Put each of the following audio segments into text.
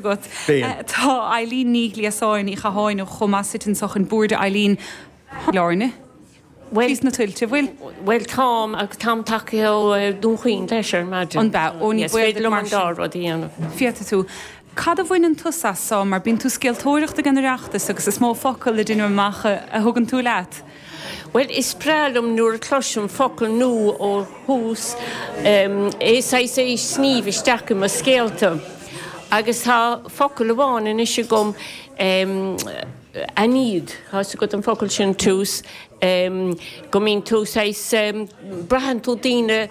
agat. Bíonn. Tá Eileen Ní Ghliasáin Uí Chatháin chomh maith suite ansa bord Eileen i lár na. Bhuel. Síos na tuilte, bhfuil? Bhuel, táim agus táim tagtha ó Dhún Chaoin leis ar maidin. An b'ea? Ó ní Yes, baol féidir duit liom mar an dá sin. rud a dhéanamh. Féadfaidh tú. Cad a bhaineann tusa as so, mar bíonn tú ag scéaltóireacht ag an Oireachtas agus is mó focal a deinim amach a thugann tú leat. Bhuel, is breá liom nuair a chloisim focal nua ó Toose agus é saghas a shníomh isteach i mo scéalta. Agus tá focal amháin anois agam, ainiad, tá's agat an focal sin, Toose, go mbíonn tú saghas, braitheann tú daoine,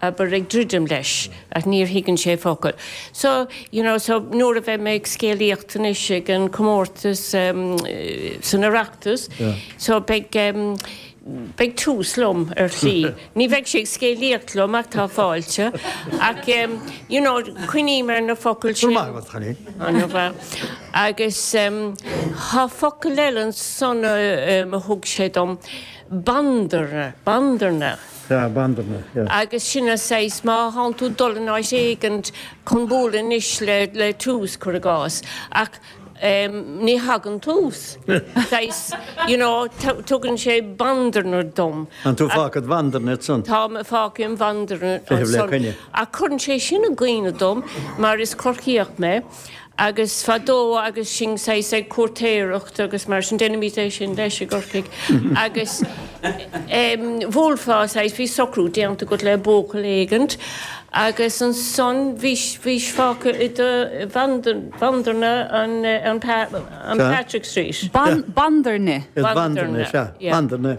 abair, ag druidim leis, ach ní thuigeann sé an focal. So, you know, so nuair a bheidh mé ag scéalaíocht anois ag an chomórtas em san Oireachtas, so beidh em beidh Toose liom ar shlí, ní bheidh sé ag scéalaíocht liom ach tá na focail, ach em you know cuimhním ar na focail sin. Go raibh maith agat, Eileen. An raibh a. Agus em tá focal eile ansan a em a thug sé dom, bandairne, bandairne. Sea, bandairne, yeah. Agus sin an saghas, má tánn tú ag dul in áit éigint chun bualadh anois le Toose, cur i gcás, ach ní thagann Toose. Saghas, you know, tugann sé bandairne dom. Tánn tú fágtha i do bhandairne ansan? Tá mé fágtha i mo bhandairne ansan. Ach cuireann sé sin i gcuimhne dom, mar is Corcaíoch mé, agus fadó agus sinn saghas ag cúirtéireacht agus mar sin, deinimid é sin leis i gCorcaigh, agus em bhuailfeá saghas, bhí socrú déanta agat le buachaill éigint agus ansan bhís, bhís fágtha i do bhandairne on eh, on Sea. Patrick Street. Sea. Bandairne? Is bandairne, sea, yeah. bandairne.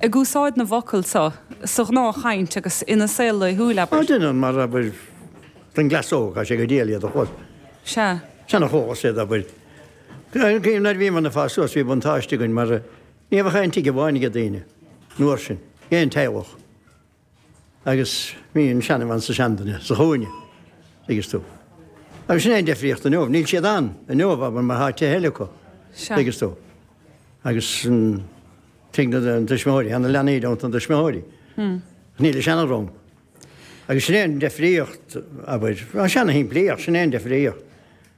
ag úsáid na bhfocal so sa ghnáthchaint agus ina saol laethúil, abair. Sin an mar, abair, an glasóg, tá sé go diail, iad a fhoghlaim. Sea. Conas a chósta iad, abair. Cuimhnigh nuair a bhíomair ag fás suas, bhí buntáiste againn mar ní bhíodh ach aon tigh amháin ag aon duine, an uair sin, aon teaghlach. Agus bhí an seanabhean is an seanduine sa chúinne, tuigeas tú. Agus sin é an deifríocht inniu, níl siad ann inniu, abair, mar tá tithe eile acu, tuigeas tú. Agus tig na tuismitheoirí, tá na leanaí in aontíos na dtuismitheoirí. Níl an seanadhream ann. Agus sin é an deifríocht, abair. Tá sé ana-shimplí ach sin é an deifríocht.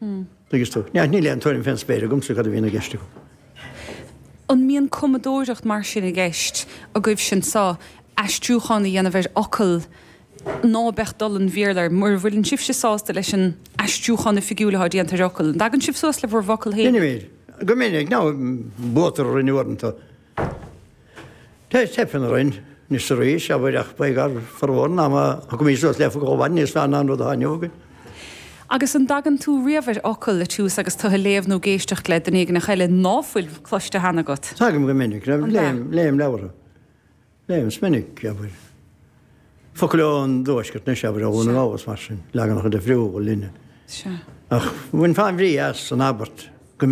Tuigim tú. Níl aon tuairim fén spéir agamsa cad a bhíonn i gceist acu. An mbíonn cumadóireacht mar sin i gceist agaibhse anso, aistriúchán a dhéanamh ar fhocail ná beadh dul an Bhéarla air? Mura bhfuileann sibhse sásta leis an aistriúchán oifigiúil atá déanta ar fhocail, an dtagann sibh suas le bhur bhfocail féin? Deinim é, go minic. Ná buaitear orainn uaireanta. Teipeann orainn anois is arís, abair, ach b'fhéidir furmhór an ama go dtagaimid suas le focal i bhfad níos fearr ná an rud atá inniu againn. Agus an dtagann tú riamh ar fhocal leithéis agus tu ag léamh nó ag éisteacht le duine éigneach eile ná fuil cloiste cheana agat? Tagaim go minic. An ea? Léim leabhartha. Léim, is minic, abair, focal ón dtuaisceart anois, abair, ó Dhún na nGall is mar sin, leaganacha difriúil linne. Sea. Ach bhainfeá an bhrí as an abairt.